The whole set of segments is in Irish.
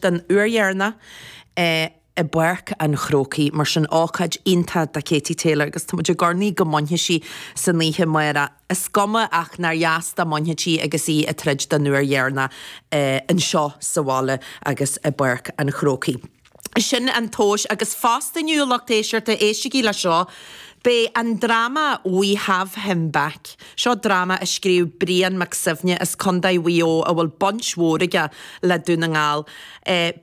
den uair dheireanach i bPáirc an Chrócaigh. Mar sin, ócáid iontach do Katie Taylor agus táimid ag urnaí go mbainfidh sí san oíche amáireach. Is cuma ach nár dheas dá mbainfeadh sí agus í ag troid den uair dheireanach anseo sa bhaile agus i bPáirc an Chrócaigh. Sin an tomhas. Agus fosta inniu, lucht éisteachta, éistigí le seo, beidh an dráma We Have Him Back. Seo dráma a scríobh Brian Mac Suibhne as Condae Mhaigh Eo a bhfuil baint mhór aige le Dún na nGall.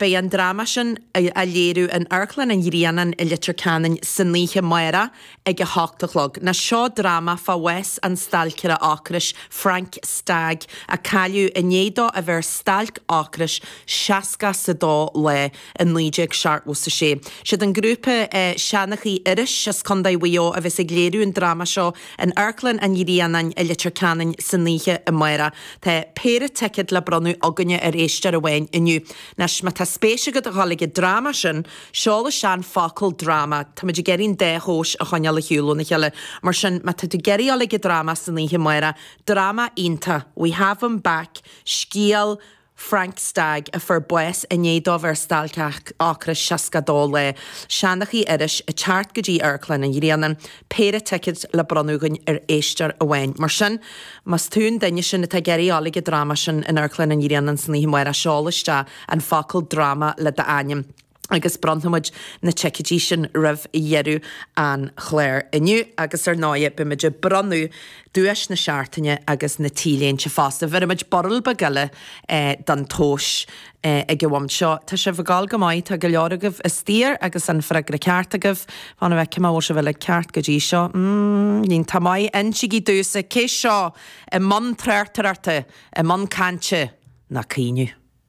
Beidh an dráma sin á léiriú in Amharclann an Ghrianáin i Leitir Ceanainn san oíche amáireach ag a hocht a chlog. Now, seo dráma fá bhás an stailceara ocrais Frank Stagg a cailleadh i ndiaidh dó a bheith ar stailc ocrais 62 lá. i 1976. Siad an grúpa Seanchaí Iorrais as Condae Mhaigh Eo a bheas ag léiriú an dráma seo in Amharclann an Ghrianáin i Leitir Ceanainn san oíche amáireach. Tá péire ticead le bronnadh againne ar éisteoir amháin inniu. Anois má tá spéis agat a dhul ag an dráma sin seol isteach an focal dráma. Táimid ag iarraidh an dá thomhas a choinneáil ar shiúl óna chéile. Mar sin má tá tú ag iarraidh dhul ag an dráma san oíche amáireach, dráma iontach, We Have Him Back, Scéal, Frank Stagg, a fuair bás i ndiaidh dó bheith ar stailc ocrais 62 lá. Seanchaí Iorrais ag teacht go dtí Amharclann an Ghrianáin. Péire ticead le bronnadh againn ar éisteoir amháin. Mar sin, más tú an duine sin atá ag iarraidh dul ag an dráma sin in Amharclann an Ghrianáin san oíche amáireach, seol isteach an focal 'dráma' le d'ainm. agus bronnfaimid na ticeidí sin roimh dheireadh an chláir inniu agus ar ndóigh beimid ag bronnadh duais na seachtaine agus na t-léinte fosta. Bhéarfaimid barúil beag eile don tomhas ag an bhomaite seo. Tá sibh ag gabháil go maith, tá go leor agaibh istigh agus an freagra ceart agaibh. Fan go bhfeicfidh mé an bhfuil sibh uilig ceart go dtí seo? Níl, tá maith, insigí domhsa cé seo i mbun tráchtaireachta, i mbun cainte ná caoineadh.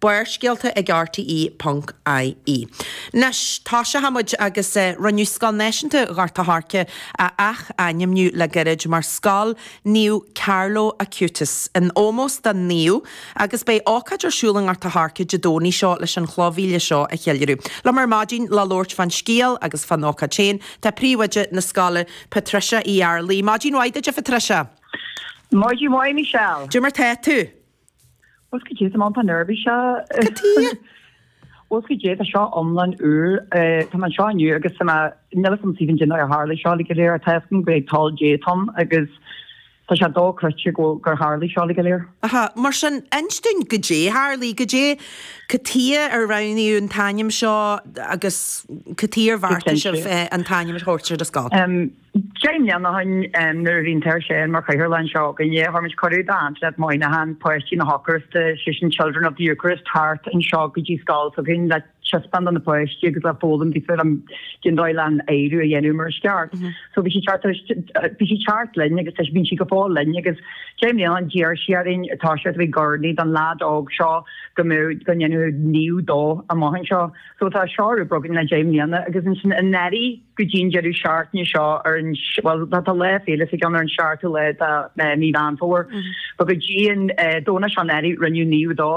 Barrscéalta ag rte ponc ie. Anois, tosóchaimid agus rinneadh Scoil Náisiúnta Ghort a' Choirce a ath-ainmniú le gairid mar Scoil Naomh Carlo Acutis, in ómós don naomh, agus beidh ócáid ar siúl i nGort a' Choirce Dé Domhnaigh seo leis an chloch mhíle seo a cheiliúradh. Liom ar maidin le labhairt fán scéal agus fán ócáid féin tá Príomhoide na Scoile, Patricia Uí Fhearlaigh. Maidin mhaith duit a Phatricia! Maidin mhaith Michelle! Cad é mar tá tú? Bhfuil fhios agat cad é, tá mé iontach neirbhíseach. Cad chuige? Bhfuil fhios agat cad é, tá seo iomlán úr. Eh, tá mé anseo inniu agus tá mé, níl fhios a'm cad é an dóigh ar tharla seo uilig go léir, ach tá fhios agam gurb é toil Dé atá ann agus tá sé dochreidte go bhfuil, gur tharla seo uilig go léir. Aha, mar sin inis dúinn cad é a tharlaigh, cad é, cad chuige ar roghnaíodh an t-ainm seo agus cad chuige ar bheartaigh sibh an t-ainm a thabhairt ar an scoil? Deich mbliana ó shin nuair a bhí an tAthair Seán mar Chathaoirleach anseo againne, thabhair sé cuireadh do Antoinette Moynihan, Páistí na hEocairiste, is é sin Children of the Eucharist, thart anseo go dtí scoil s'againn le taispeáint do na páistí agus le foghlaim daofa cad é an dóigh leis an adhradh a dhéanamh mar is ceart. So bhí sí thart bhí sí thart linn agus tá sí bíonn sí go fóill linn agus deich mbliana an d'iarr sí orainn tá sé bheith ag urnaí don leaid óg seo go mbeadh go ndéanfaí naomh dó amach anseo. So tá seo ar obair againn le deich mbliana agus ansin anuraidh go dtí an deireadh seachtaine seo ar an, bhuel tá lá féile s'aigesean ar an seachtú lá de mí Mheán Fómhair but go dtí an Domhnach seo anuraidh rinneadh naomh dó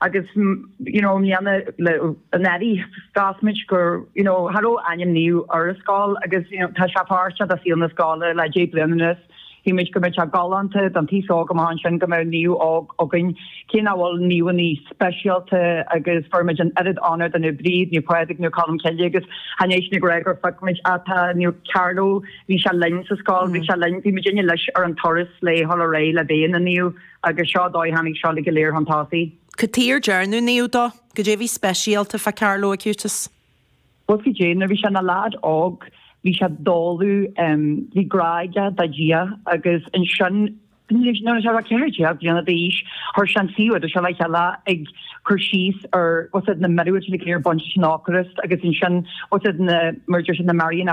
agus you know i mbliana le anuraidh mheas muid gur you know cha raibh ainm naomh ar an scoil agus you know tá sé páirt de saol na scoile le deich bliana anuas. Shíl muid go mbeadh sé galánta don t-aos óg amach ansin go mbeadh naomh óg againn, cé nach bhfuil naomhannaí speisialta, agus bheir muid an oiread onóir do Naomh Bríd, Naomh Pádraig, Naomh Colm Cille agus Sheáin Éisc na Gréagóir feicimid atá Naomh Carlo, bhí sé linn sa scoil, bhí sé linn, bhí muidinne leis ar an turas le sula raibh sé le bheith ina naomh agus seo an dóigh a tháinig seo uilig go léir chun tosaigh. Cad chuige ar dearnadh naomh dó? Cad é bhí speisialta fá Carlo Acutis? What's it cad é, nuair bhí sé ina leaid óg bhí sé dóghadh, bhí grá aige do Dhia agus ansin nuair bhí sé about ceathair déag bliana d'aois chuir sé an suíomh seo le chéile ag cur síos ar what's it na míorúiltí a bhí ag baint leis an Eocairist agus ansin what's it na mar a deir siad na Marian